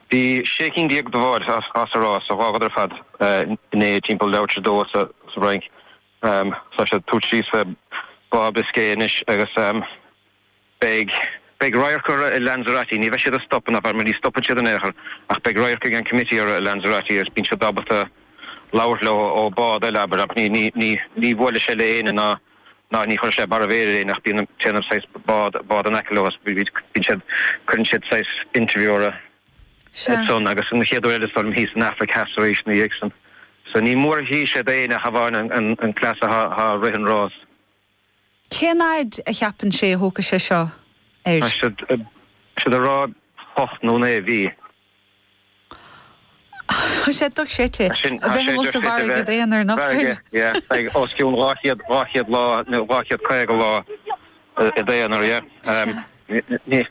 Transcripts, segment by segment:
Bhí sé cinn déag de bháid sa rás a dh'fhágadar ar fad inné timpeall leathuair tar éis a dó sa bhFrainc. Tá siad ag tabhairt síos fé Bhá Biscay anois agus beidh radharc orra i Lanzarote. Ní bheidh siad ag stopadh ann abair, mar ní stopann siad in aon chor, ach beidh radharc ag an committee orra i Lanzarote agus bíonn siad ábalta labhairt leo ó bhád eile abair, ach ní bhuailfidh sé le éinne ná. ná ní chuirfidh sé barra mhéir ar éinne ach bíonn siad ag déanamh saghas bád bád in aice leo as bíonn siad cuireann siad saghas interview orthu ansan agus an chéad uair eile is dóigh liom thíos san Afraic Theas arís na dhiaidh san. So ní mór a chíonn sé d'éinne ach amháin an an an cleas athá ag rith an rás. Cén fhaid a cheapann sé a thógfaidh sé seo air? Tá siad siad a' rá hocht nó naoi mhí. Tá sé dochreidte. A bheith amuigh sa bhfarraige d'aonar, nach bhfuil? Yeah, beidh os cionn dhá chéad, dhá chéad lá nó dhá chéad caoga lá i d'aonar, yeah. Ní,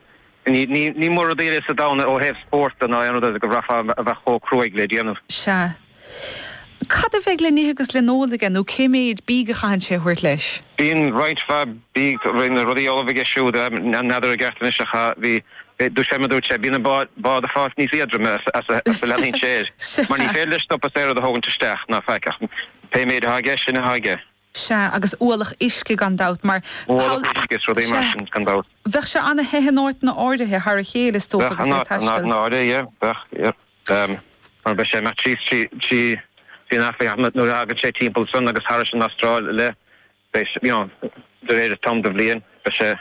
ní, ní, ní mórán rudaí eile sa domhan ó thaobh spórt de ná aon rud eile go bhfaighfeá a bheith chomh cruaidh le déanamh. Sea. Cad a bheidh le n-ithe agus le n-ól aige nó cé méid bídh a chaitheann sé a thabhairt leis? Bíonn roinnt mhaith bídh, roinnt rudaí ullamh aige siúd. N'fheadar i gceart anois, ach bhí, dúirt sé, mar dúirt sé, bíonn an bád ag fás níos éadroime is a leanaíonn sé air, mar ní féidir leis stopadh is aon rud a thógaint isteach, ná faic, ach pé méid atá aige, sin atá aige. Sea, agus ualach uisce gan dabht, mar. Ualach uisce is rudaí mar sin, gan dabht. Bheadh sé ana the in áiteanna áirithe thar a chéile is dócha agus é ag taisteal. Bheadh, in áirithe yeah, bheadh yeah. Mar beidh sé ag imeacht trí, trí, trí an Afraic ach nuair a thagann sé timpeall san agus thairis an Astráil i leith beidh sé, you know, de réir an t-am de bhliain beidh sé,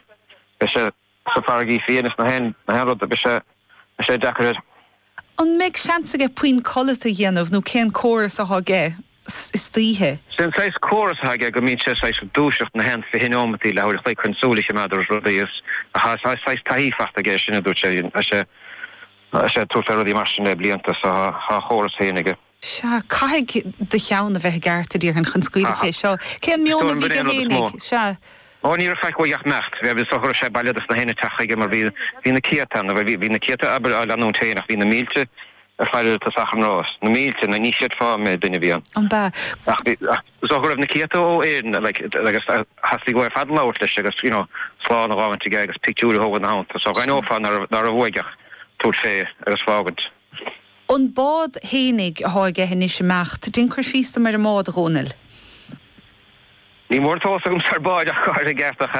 beidh sé. sna farraigí fiaine is na haon rud beidh sé deacair air. An mbeidh seans aige puinn codlata a dhéanamh nó cén córas atá aige istoíche? Sé an saghas córas atá aige go mbíonn sé saghas ag dúiseacht na haon fiche neomataí leathuair a chloig chun súil a chimeád ar rudaí is tá saghas taithí fachta aige ar sin a dúirt sé. Tá sé ag tabhairt fé rudaí mar sin le blianta so tá a chóras féin aige. Sea, caithfidh do cheann a bheith i gceart, a déarfainn, chun scaoileadh fé seo. Cén meon a bhí aige fhéinig? Sea. Ó, ní raibh faic uaidh ach imeacht. Is dócha go raibh sé bailithe dos na héinne ag teacht chuige mar bhí, bhí na céadta ann, bhuel, bhí na céadta, abair, á leanúint féin ach bhí na mílte ag faire ar an tosach an rás. Na mílte, na, ní fheadar cé méid duine a bhí ann. An b'ea? Ach bhí, ach is dócha go raibh na céadta ó Éirinn, like, agus theastaigh uathu ar fad labhairt leis agus, you know, slán a dh'fhágaint aige agus pictiúir a thógaint ina theannta. So dh'aithneofá ná raibh, ná raibh uaidh ach tabhairt fé agus fágaint. An bád fhéinig athá aige anois ag imeacht. Dein cur síos dom ar an mbád, a Dhónaill. Ní mór an t-eolas agamsa ar bháid ach táir i gceart ach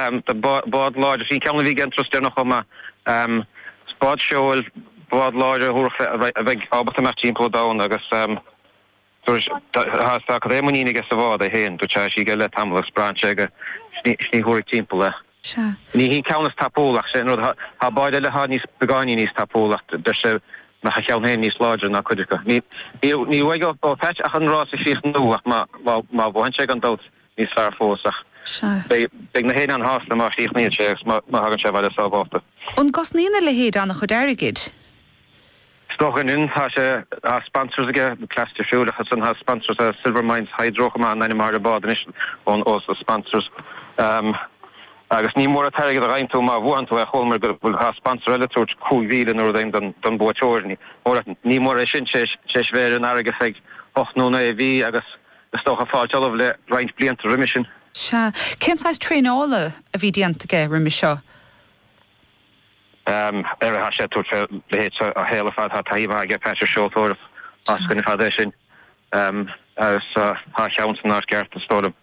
bád láidir. Sin ceann a bhí aige an turas deireanach chomh maith. Is bád seoil, bád láidir a thabharfadh a bheidh ábalta imeacht timpeall an domhan agus. Turais, Tá cad é muinín aige sa bhád é féin, tá sé aige le tamall agus braitheann sé ag a shní shuaraigh timpeall é. Ní hí an ceann is tapúla ach sé an rud, tá báid eile atá níos beagáinín níos tapúla ach deir sé go mbeadh a cheann féin níos láidre ná cuid acu. Níl uaidh ó Pat ach an rás a chríochnú ach má bhuann sé gan dabht níos fearr fós ach beidh na héin an-shásta má chríochnaíonn sé agus má thagann sé abhaile sábhálta. An gcosnaíonn a leithéid an-chuid airgid? Is dócha go ndeineann tá sé á sponsors aige costasúil ach ansan tá sponsors ar Silvermines Hydro an ainm atá ar an bád anois ón ós a sponsors agus ní mór an t-airgead a gheibheann tú má bhuann tú é chualamar go bhfuil dhá sponsor eile ag tabhairt 5,000 nó rud éigin don don buaiteoir ní mór ní mór é sin tar éis bheith ar an bhfarraige hocht nó naoi mhí agus is dócha ag fáilt ullamh le roinnt blianta roimis sin. Sea. Cén saghas traenála a bhí déanta aige roimis seo? Aire atá sé ag tabhairt fé leithéid seo a shaol ar fad. Tá taithí mhaith aige Pat ar seoltóireacht as go na fada é sin agus tá a cheann san áit gceart is dóigh liom.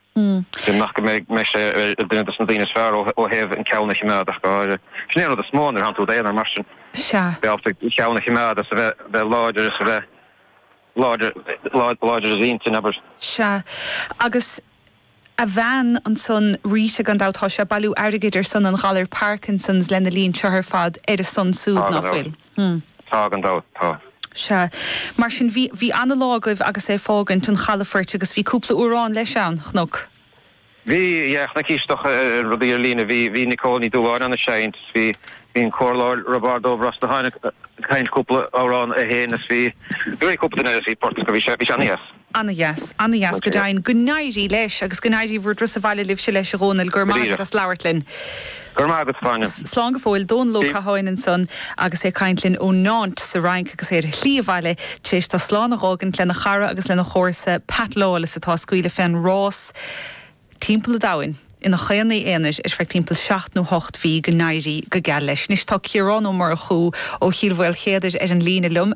Sin nach go mbeidh mbeidh sé ar duine dos na daoine is fearr ó ó thaobh an ceann a chimeád ach gáire. Sin é an rud is mó nuair a thánn tú id aonar mar sin. Sea. Bheith ábalta an ceann a chimeád is a bheith bheith láidir is a bheith láidir láidir láidir i d'intinn abair. Sea agus a bhean ansan Rita gan dabht tá sé ag bailiú airgid ar son an ghalair Parkinsons lena linn seo ar fad ar a son súd ná fuil? Tá gan dabht, tá. Sea. Mar sin bhí, bhí ana lá agaibh agus é ag fágaint an chalafoirt agus bhí cúpla amhrán leis ann, chonac? Bhí, yeah, chonaicís é ar rudaí ar líne, bhí, bhí Nicole Ní Dhubhshláine ann ag seinnt is bhí, bhí an comhairleoir Roibeárd Ó Brosnacháin ag cantain cúpla amhrán é fhéin is bhí, bhí cúpla duine eile, bhí Port, bhí sé, bhí sé ana dheas. Ana dheas, ana dheas, go deimhin. Go n-éirí leis agus go n-éirí bhur dturas abhaile libhse leis, a Dhónaill. Go raibh maith agat as labhairt linn. Go raibh maith agat, a Áine. Slán go fóill, Dónal Ó Catháin ansan agus é ag caint linn ó Nantes sa Fhrainc agus é ar a shlí abhaile tar éis dó slán a dh'fhágaint lena chara agus lena chomharsa Pat Lawless atá ag scaoileadh fén rás timpeall an domhain ina chaonaí aonair ar feadh timpeall seacht nó hocht mhí. Go n-éirí go geal leis. Anois tá Ciarán Ó Murchú ó Chill Mhaoilchéadair ar an líne liom.